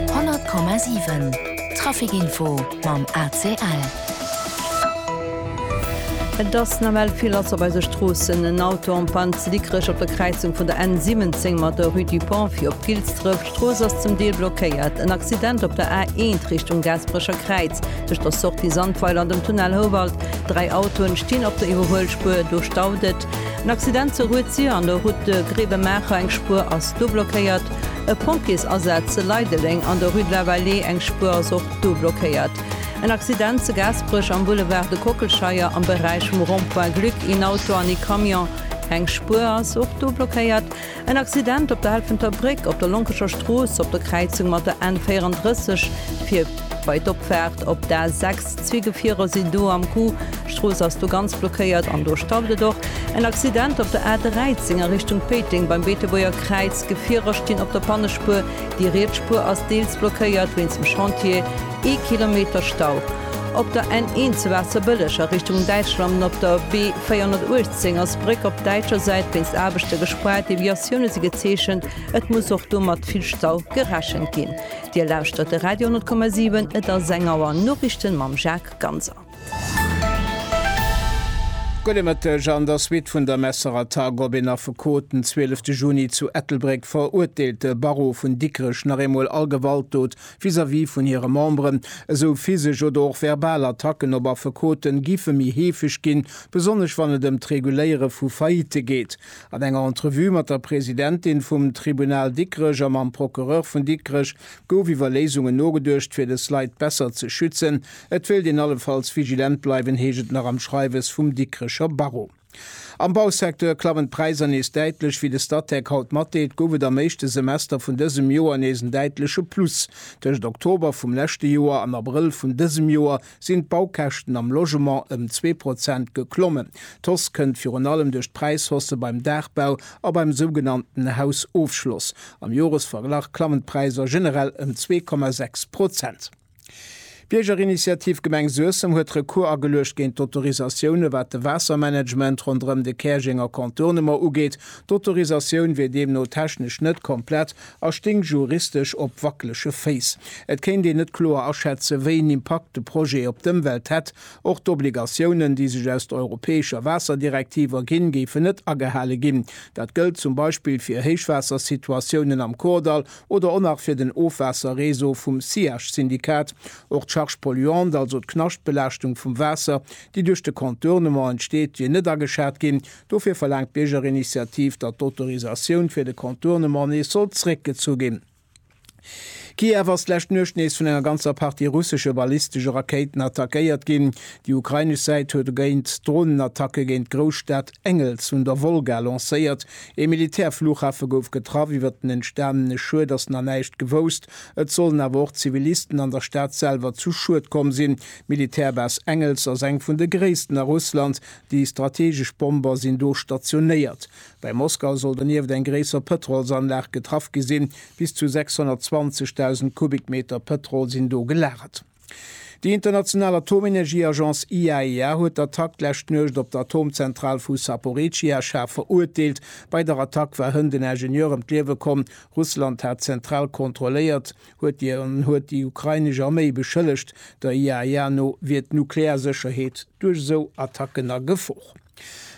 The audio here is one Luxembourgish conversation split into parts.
100,7 Traficinfo mam ACL. Et ass nawell vill lass op eise Stroossen. En Auto en panne zu Dikrech op der Kräizung vun der N 17 mat der Rue du Pont fir op Gilsdref. D'Strooss ass zum Deel blockéiert. En Accident op der A 1 Richtung Gaasperecher Kräiz tëscht der Sortie Sandweiler an dem Tunnel Houwald. Dräi Autoen stinn op der Iwwerhuelspuer, do staut et. En Accident zur Rue Zier an der Route de Grevenmacher, eng Spuer ass do blockéiert. E Pompjeesasaz zu Leideleng an der Rue de la Vallée, eng Spuer ass och do blockéiert. En Accident zu Gaasperech am Boulevard de Kockelscheier am Beräich vum Rond-point Glück, een Auto an ee Camion, eng Spuer ass och do blockéiert. En Accident op der Helfenter Bréck op der Lonkescher Strooss op der Kräizung mat der N 34 fir bei d'Opfaart op d'A 6. Zwee Gefierer sinn do am Coup, d'Strooss ass do ganz blockéiert an do stauft et och. En Accident op der A 13 a Richtung Péiteng beim Beetebuerger Kräiz. Gefierer stinn op der Pannespuer, déi riets Spuer ass deels blockéiert wéinst dem Chantier. Ee Kilometer Stau. Op der N1 zu Waasserbëlleg a Richtung Däitschland op der B 418 ass d'Bréck op däitscher Säit wéinst Aarbechte gespaart. Deviatioune si gezeechent, et muss och do mat vill Stau gerechent ginn. Dir lauschtert de Radio 10,7, et ass eng Auer Noriichten mam Jacques Ganser. Gudde Mëtteg, An der Suite vun der Messerattack op een Affekot den 12 de Juni zu Ettelbréck verurteelt de Barreau vun Dikrech nach eemol all Gewaltdot vis-à-vis vun hire Memberen, esou physesch oder och verbal Attacken op Affekoten gife méi heefeg ginn, besonnesch wann et ëm d'Reguléiere vu Faillitte geet. An enger Entrevue mat der Presidentin vum Tribunal Dikrech a mam Procureur vun Dikrech gouf iwwer Léisungen nogeduecht, fir des Leit besser ze schützen. Et wéilt een allefalls vigilent bleiwen, heescht et nach am Schreiwes vum Dikrecher Barreau. Am Bausecteur klammen d'Präisser nees däitlech. Wéi de Statec haut matdeelt, gouf et am éischte Semester vun dësem Joer nees en däitleche Plus. Tëscht Oktober vum leschte Joer an Abrëll vun dësem Joer sinn d'Baukäschten am Logement ëm zwee Prozent geklommen. D'Hausse kënnt virun allem duerch d'Präishausse beim Daachbau a beim sougenannten Hausofschloss. Am Joresverglach klammen d'Präisser generell ëm zwee Komma sechs Prozent. D'Biergerinitiativ Gemeng Suessem huet Recours ageluecht géint d'Autorisatioune wat de Waassermanagement ronderëm de Käerjenger Contournement ugeet. D'Autorisatioun wier deemno technesch net komplett a sting juristesch op wackelege Féiss. Et kéint een net kloer aschätzen, wéi en Impakt de Projet op d'Ëmwelt hätt. Och d'Obligatiounen, déi sech aus der europäescher Waasserdirektiv erginn, géifen net agehale ginn. Dat gëllt zum Beispill fir Héichwaassersituatiounen am Kordall oder och nach fir den Ofwaasserreseau vum SIACH-Syndikat, och d'Charge polluante, also d'Knaschtbelaaschtung vum Waasser, déi duerch de Contournement entsteet, wier net ageschat ginn. Dofir verlaangt d'Biergerinitiativ, datt d'Autorisatioun fir de Contournement nees soll zréckgezu ginn. Kiew ass d'lescht Nuecht nees vun enger ganzer Partie russesche ballistesche Rakéiten attackéiert ginn. Déi ukrainesch Säit huet e géint Dronenattacke géint d'Grousstad Engels un der Wolga lancéiert, Ee Militärflughafe gouf getraff. Iwwer den entstanene Schued ass nach näischt gewousst. Et sollen awer och Zivilisten an der Stad selwer zu Schued komm sinn. D'Militärbase Engels ass eng vun de gréissten a Russland. Déi strategesch Bomber sinn do stationéiert. Bei Moskau soll donieft eng gréisser Pëtrolsanlag getraff gi sinn. Bis zu 620.000 Kubikmeter Pëtrol sinn do gelagert. Déi international Atomenergieagence IAEA huet d'Attack d'lescht Nuecht op d'Atomzentral vu Saporecia schaarf verurteelt. Bei der Attack war hënnt en Ingenieur ëm d'Liewe komm. Russland hat d'Zentral kontrolléiert, huet déi an huet déi ukrainesch Arméi beschëllegt. Der IAEA no wier d'Nuklearsécherheet duerch esou Attacken a Gefor.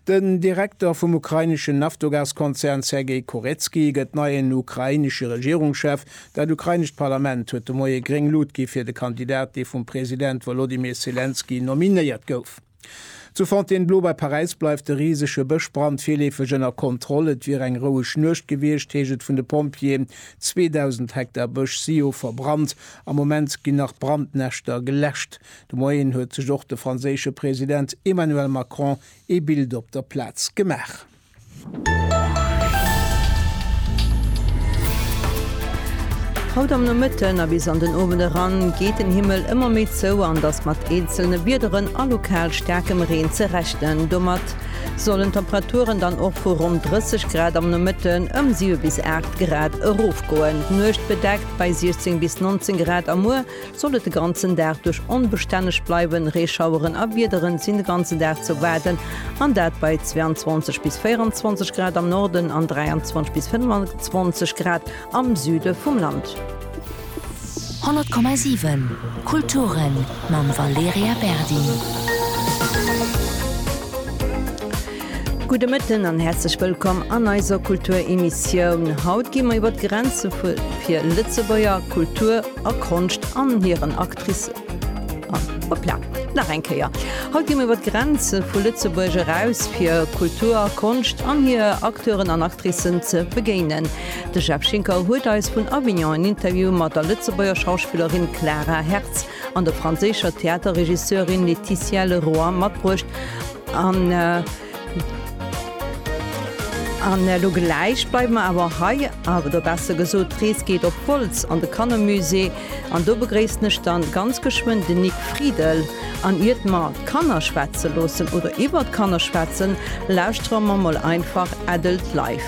Den Direkter vum ukraineschen Naftogas-Konzern Sergei Kurecki gëtt neien ukrainesche Regierungschef. Dat ukrainescht Parlament huet de Moie gréng Lut gi fir de Kandidat, dee vum President Wolodymyr Selenskyj nominéiert gouf. Zu Fontainebleau bei Paräis bleift de risege Bëschbrand virleefeg ënner Kontroll. Et wier eng roueg Nuecht gewiescht, heescht et vun de Pompjeeën. 2.000 Hektar Bësch si jo verbrannt. Am Moment ginn nach Brandnäschter geläscht. De Moien huet sech och de franséische President Emmanuel Macron ee Bild op der Plaz gemaach. Haut am Nomëtten a bis an den Owend eran geet den Himmel ëmmer méi zou an et ass mat eenzelne Wiederen a lokal staarkem Reen ze rechnen. Domat sollen d'Temperaturen dann och vu ronn 30 Grad am Nomëtten ëm 7 bis 8 Grad erofgoen. D'Nuecht bedeckt bei 16 bis 19 Grad a muer Sollt et de ganzen Dag duerch onbestänneg bleiwen, Reeschaueren a Wiederen sinn de ganze Dag ze erwaarden, an dat bei 22 bis 24 Grad am Norden an 23 bis 25 Grad am Süde vum Land. 100,7 Kulturen mam Valerija Berdi. Gudde Mëtten an häerzlech wëllkomm an eiser Kulturemissioun. Haut gi mer iwwer d'Grenze fir Lëtzebuerger Kultur. a Konscht an hiren Actricen. An, hoppla, nach eng Kéier, haut gi mir iwwer d'Grenze vu Lëtzebuerg eraus, fir Kultur, Konscht an hir Acteuren an Actricen ze begéinen. De Jeff Schinker huet eis vun Avignon en Interview mat der Lëtzebuerger Schauspillerin Clara Hertz an der franséischer Theaterregisseurin Laetitia Leroy matbruecht an, An elo gläich bleiwe mer awer hei, oder besser gesot, d'Rees geet op Wolz an de Kannermusée. An do begréissen ech dann ganz geschwënn den Nic Friedel. An iert mer d'Kanner schwätze loossen oder iwwert d'Kanner schwätzen, lauschtere mer mol einfach Adult Life.